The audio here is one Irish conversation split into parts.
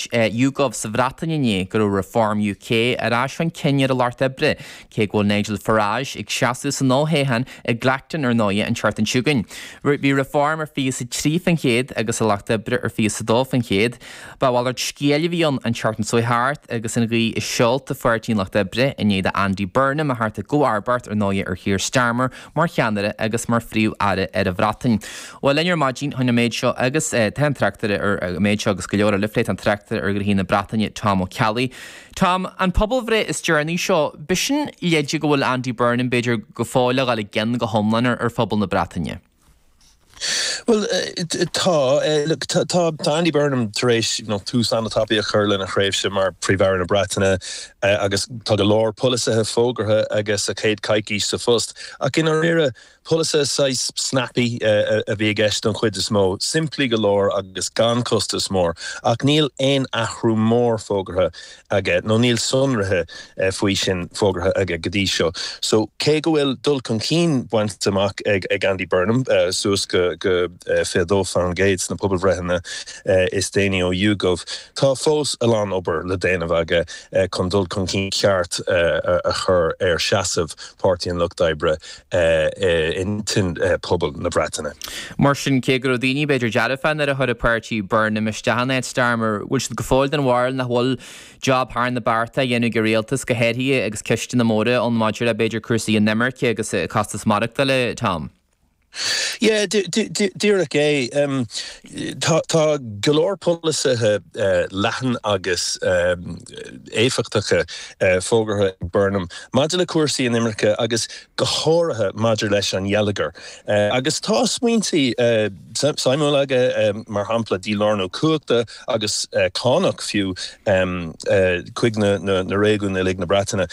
YouGov sa Bhreatain inniu go raibh Reform UK ar ais chun cinn ar an Lucht Oibre, cé go bhfuil Nigel Farage ag seasamh san fhothoghchán i gClacton ar ndóigh an tseachtain seo chugainn. Bhí Reform ar 23% agus an Lucht Oibre ar 22% Ba mhalairt scéil a bhí ann an tseachtain seo thart agus an ghaoth i seolta Pháirtí an Lucht Oibre i ndiaidh d'Andy Burnham a theacht i gcomharbacht ar ndóigh ar Keir Starmer mar cheannaire agus mar phríomh-aire ar an Bhreatain. Bhuel, linn ar maidin chun an méid seo agus tá an tráchtaire ar an méid seo agus go leor eile a phlé, tá an tráchtaire ar ghnóthaí na Breataine, Tom Ó Ceallaigh. Tom, an pobalbhreith is deireanaí seo, an b'shin leid go bhfuil Andy Burnham, b'fhéidir, go fóill ag dul i gcion go hiomlán ar phobal na Breataine? Bhuel, tá. Tá Andy Burnham tar éis tús an-tapaidh a chur lena thréimhse mar Phríomh-Aire na Breataine agus tá go leor polasaithe fógartha aige sa chéad choicís sa phost. Ach i ndáiríre, polasaithe saghas snappy a bhí i gceist don chuid is mó, simplí go leor agus gan costas mór. Ach níl aon athrú mór fógartha. aige, nó níl sonraithe faoi sin fógartha aige go dtí seo. So, cé go bhfuil dul chun cinn bainte amach ag Andy Burnham, suas go 22 fan gcéad sna pobalbhreitheanna is déanaí ó YouGov, tá fós a lán obair le déanamh aige chun dul chun cinn ceart a chur ar seasamh Páirtí an Lucht Oibre. in intinn pobal na Breataine. Mar sin, cé go raibh daoine, b'fhéidir, dearfach nuair a chuir an páirtí Burnham isteach in áit Starmer, bhfuil siad go fóill den bharúil nach bhfuil job thar na bearta á dhéanamh ag an rialtas go háirithe agus ceisteanna móra ann maidir le, b'fhéidir, cúrsaí inimirce agus costas maireachtála, Tom? Yeah, díreach é. Tá go leor polasaithe leathan agus éifeachtacha fógartha ag Burnham maidir le cúrsaí inimirce agus go háirithe maidir leis an gheilleagar. Agus tá smaointí suimiúla aige, mar shampla dílárnú cumhachta agus cánach fiú, chuig réigiúin uilig na Breataine.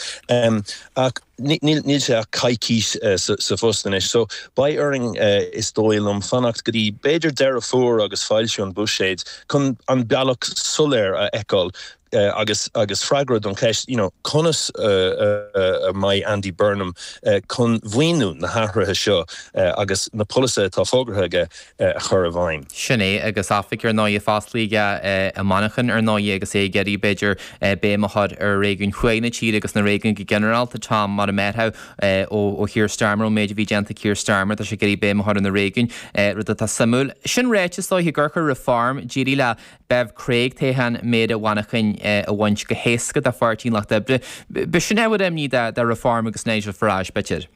Ach. Níl sé ach coicís sa phost anois so beidh orainn, is dóigh liom, fanacht go dtí b'fhéidir Deireadh Fómhair agus foilsiú an Buiséad chun an bealach soiléir a fheiceáil agus freagra don cheist, you know, conas a mbeidh Andy Burnham chun mhaoiniú na hathruithe seo agus na polasaithe atá fógartha aige. a chur i bhfeidhm. Sin é, agus oifig ar ndóigh foscailte aige i Manchain ar ndóigh agus é ag iarraidh, b'fhéidir, béim a chur ar réigiúin thuaidh na tíre agus na réigiúin go ginearálta, Tom, mar mhalairt ó Keir Starmer, ón méid a bhí déanta ag Keir Starmer, tá sé ag iarraidh béim a chur ar na réigiúin, rud atá suimiúil. Sin ráite is dóigh gur thar Reform, d'éirigh le Bev Craig toghchán méara Mhanchain a bhaint go héasca do Pháirtí an Lucht Oibre. B'shin ábhar imní do Reform agus Nigel Farage, b'fhéidir.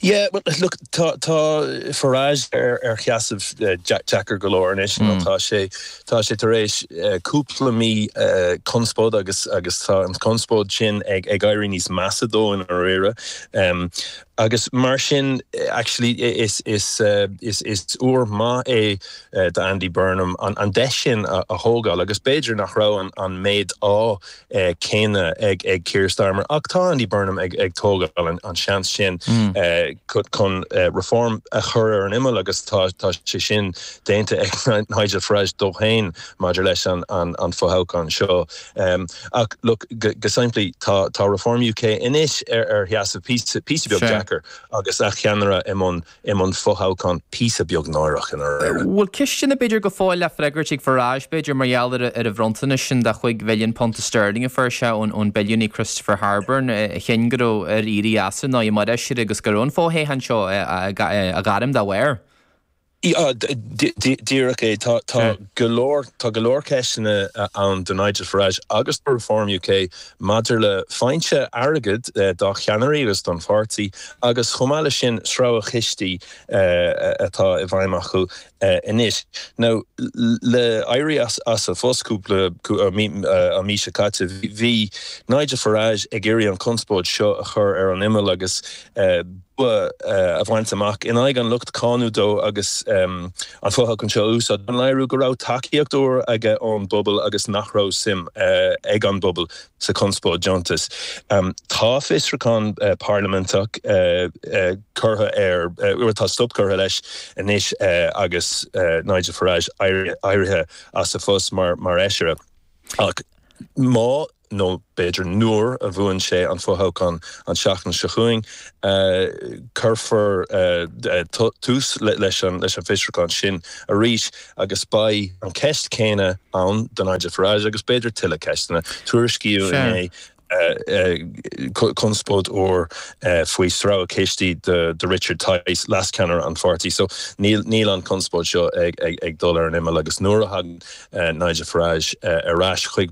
Yeah, well, look, tá, tá Farage ar, ar sheasamh eh, de- deacair go leor anois, nó mm. tá sé, tá sé tar éis eh, cúpla mí eh, conspóid agus, agus tá an chonspóid sin ag, ag éirí níos measa dó i ndáiríre. Um, agus mar sin, eh, actually, is, is, eh, is, is uair mhaith é eh, do Andy Burnham an, an deis sin a, a thógáil, agus b'fhéidir nach raibh an, an méid ádh céanna ag Keir Starmer ach tá Andy Burnham ag tógáil an seans sin chun Reform a chur ar an imeall agus tá sé sin déanta ag Nigel Farage dó féin maidir leis an fothoghchán seo. Ach look, go simplí, tá Reform UK anois ar sheasamh píosa beag deacair agus a gceannaire i mbun i mbun fothoghcháin píosa beag náireach i ndáiríre. Bhfuil ceisteanna, b'fhéidir, go fóill le freagairt ag Farage, b'fhéidir, mar gheall ar an bhronntanas sin de chúig mhilliún punta steirling a fuair sé ón billiúnaí Christopher Harborne a chinn go raibh air éirí as ar ndóigh mar fheisire agus go raibh an fothoghchán seo a ghairm dá bharr? Díreach é. Tá. go leor, tá go leor ceisteanna ann do Nigel Farage agus do Reform UK maidir le foinse airgid dá cheannairí agus don pháirtí agus chomh maith leis sin sreabhadh cistí atá i bhfeidhm acu anois nó le éirí as a phost cúpla an mhí seo caite bhí Nigel Farage ag iarraidh an chonspóid seo a chur ar an imeall agus bua a bhaint amach in aghaidh an lucht cáinte dó agus an fothoghchán seo a úsáid chun léiriú go raibh tacaíocht úr aige ón bpobal agus nach raibh suim ag an bpobal sa chonspóid deontais. Tá fiosrúchán parlaiminteach curtha ar nó tá stop curtha leis anois agus Nigel Farage éirithe as a phost mar fheisire ach má. nó b'fhéidir nuair, a bhuann sé an fothoghchán an tseachtain seo chugainn. Cuirfear tús leis an bhfiosrúchán sin arís agus beidh an cheist chéanna ann do Nigel Farage agus b'fhéidir tuilleadh ceisteanna. Tuairiscíodh inné conspóid úr faoi shreabhadh cistí do Richard Tice, leascheannaire an pháirtí, so níl an chonspóid seo ag dul ar an imeall agus nuair a thagann Nigel Farage ar ais chuig